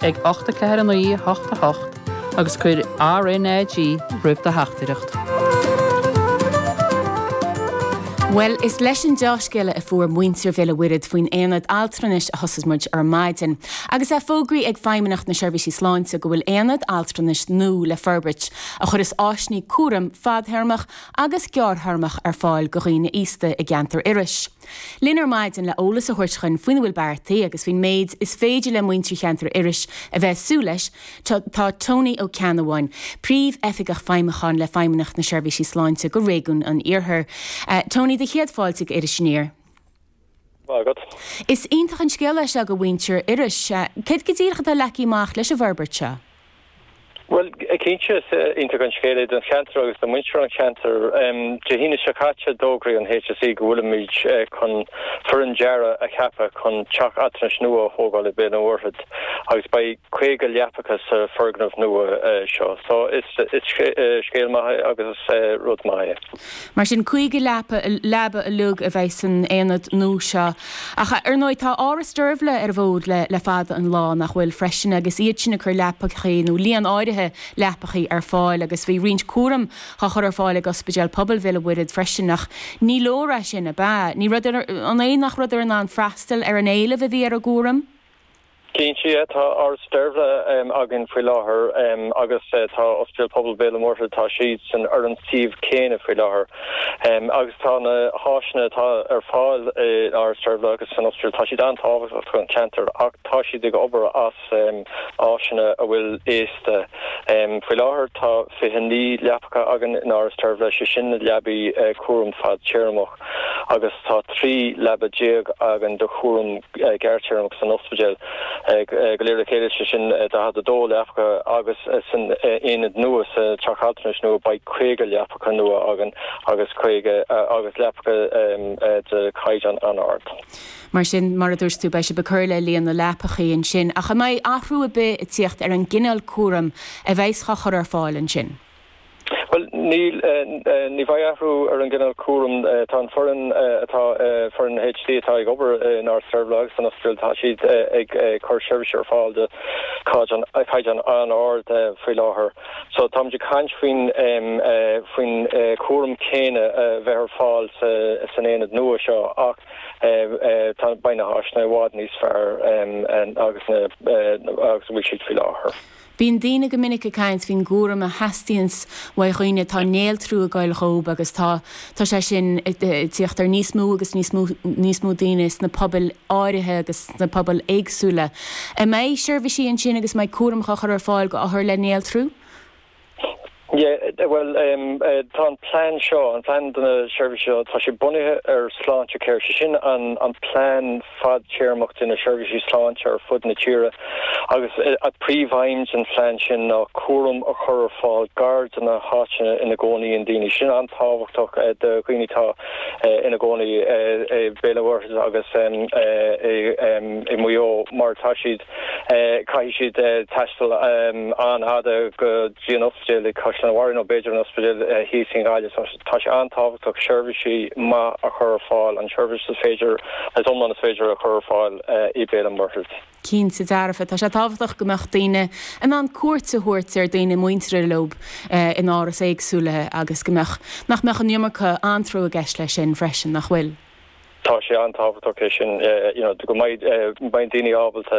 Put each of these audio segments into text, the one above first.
ag 8 4 9 8 8 agus cuir RNAG roimh do theachtaireacht. Bhuel, is leis an deá-scéala a fuair muintir Bhéal a' Mhuirthead faoin aonad altranais a thosós muid ar maidin. Agus é fógraithe ag Feidhmeannacht na Seirbhísí Sláinte go bhfuil aonad altranais nua le forbairt, a chuireas áiseanna cúraim fadthéarmach agus gearrthéarmach ar fáil go dhaoine aosta i gceantar Iorrais. linn ar maidin le eolas a thabhairt dhuinn faoina bhfuil beartaithe agus faoin méid is féidir le muintir cheantar Iorrais a bheith ag súil leis Tá Tony Ó Ceannabháin, Príomhoifigeach Feidhmiúcháin le Feidhmeannacht na Seirbhísí Sláinte go Réigiún an Iarthair. Tony, do chéad fáilte go Iris Aniar. Maith agat. Is iontach an scéala é seo do mhuintir Iorrais. Céard go díreach atá leagtha amach leis an bhforbairt seo? Bhuel, cinnte is iontach an scéal é don cheantar agus do mhuintir an cheantair. Dé hAoine seo caite d'fhógraigh an HSE go bhfuilimid chun foireann dearaidh a cheapadh chun teach altranais nua a thógáil ag Béal an Mhuirthead agus beidh 50 leapacha sa foirgneamh nua seo. So is scéal maith é agus is rud maith é. Mar sin, 50 leaba uilig a bheidh san aonad nua seo. Ach, ar ndóigh, tá Áras Deirbhle ar an bhfód le fada an lá, nach bhfuil, freisin, agus iad sin ag cur leapachaí, nó líon áirithe leapachaí, ar fáil. Agus bhí roinnt cúraim á chur ar fáil ag Ospidéal Pobail Bhéal an Mhuirthead freisin, ach ní leor é sin, ab ea? Ní rabhadar, an é nach rabhadar in ann freastal ar an éileamh a bhí ar an gcúram? Cinnte Tá Áras Deirbhle againn faoi láthair agus tá Ospidéal Pobail Bhéal an Mhuirthead tá siad san ar an suíomh céanna faoi láthair agus tá na háiseanna atá ar fáil i Áras Deirbhle agus san ospidéal tá siad an-tábhachtach don cheantar ach tá siad ag obair as áiseanna a bhfuil aosta. Faoi láthair tá 29 leapacha againn in Áras Deirbhle, sé sin na leabaí cúraim fadtéarmach. agus tá 13 leaba againn do chúram gearrthéarmach san ospidéal go léir le chéile, sé sin 42 leapacha agus san aonad nua, sa teach altranais nua, beidh 50 leapacha nua againn agus 50 agus leapacha de chaighdeán an-ard. Mar sin, mar a dúirt tú, beidh sibh ag cur le líon na leapachaí ansin. Ach an mbeidh athrú ar bith ag tíocht ar an gcineál cúraim a bheidhs á chur ar fáil ansin? Bhuel, níl, ní bheidh athrú ar an gcineál cúraim. Tá an foireann atá, foireann na HSE atá ag obair in Áras Deirbhle agus san ospidéal, tá siad ag cur seirbhís ar fáil de chaighdeán an-ard faoi láthair. So táimid ag caint faoin, faoin chúram céanna a bheith ar fáil san aonad nua seo ach tá, beidh na háiseanna i bhfad níos fearr agus na, agus a bhfuil siad faoi láthair. Bíonn daoine go minic ag caint faoin gcúram a theastaíonns ó dhaoine atá néaltrú i gceist dhóibh agus tá tá sé sin ag teacht ar níos mó agus níos mó níos mó daoine sna pobail áirithe agus sna pobail éagsúla. An mbeidh seirbhísí ansin agus an mbeidh cúram á chur ar fáil go othair le néaltrú? Bhuel, tá an plean seo, an plean do na seirbhísí seo, tá sé bunaithe ar Sláintecare, sé sin an plean fadtéarmach do na seirbhísí sláinte ar fud na tíre agus príomhaidhm den phlean sin ná cúram a chur ar fáil gar do na háiteanna ina gcónaíonn daoine. Sin an-tábhachtach do dhaoine atá ina gcónaí i Béal an Mhuirthead agus i Maigh Eo mar tá siad. Caithfidh siad taisteal an-fhada go dtí an ospidéal i Caisleán Bharra nó b'fhéidir an ospidéal thíos in Gaillimh. Tá sé an-tábhachtach seirbhísí maith a chur ar fáil, an tseirbhís is féidir, is iomlán is féidir a chur ar fáil i Béal an Mhuirthead. Cinnte dearfa. Tá sé tábhachtach go mbeadh daoine in ann cuairt a thabhairt ar daoine muinteartha leob in árais éagsúla agus go mbeadh, nach mbeadh an iomarca anró i gceist leis sin freisin, nach bhfuil? Tá sé an-tábhachtach é sin go mbeidh daoine ábalta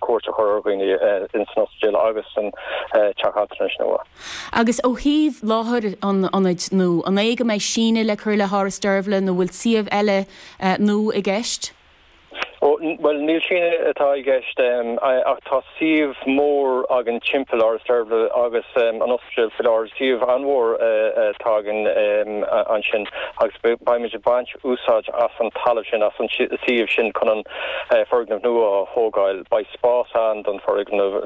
cuairt a chur ar dhaoine san ospidéal agus san teach altranais nó úr. Agus ó thaobh láthair an ionaid nó an é go mbeidh síneadh le cur le hÁras Deirbhle nó bhfuil suíomh eile nó i gceist? Bhuel, ní síneadh atá i gceist, ach tá suíomh mór againn timpeall Áras Deirbhle agus an ospidéal faoi láthair, suíomh an-mhór atá againn ansin agus beimid ag baint úsáid as an talamh sin, as an suíomh sin chun an foirgneamh nua a thógáil. Beidh spás ann don foirgneamh nua.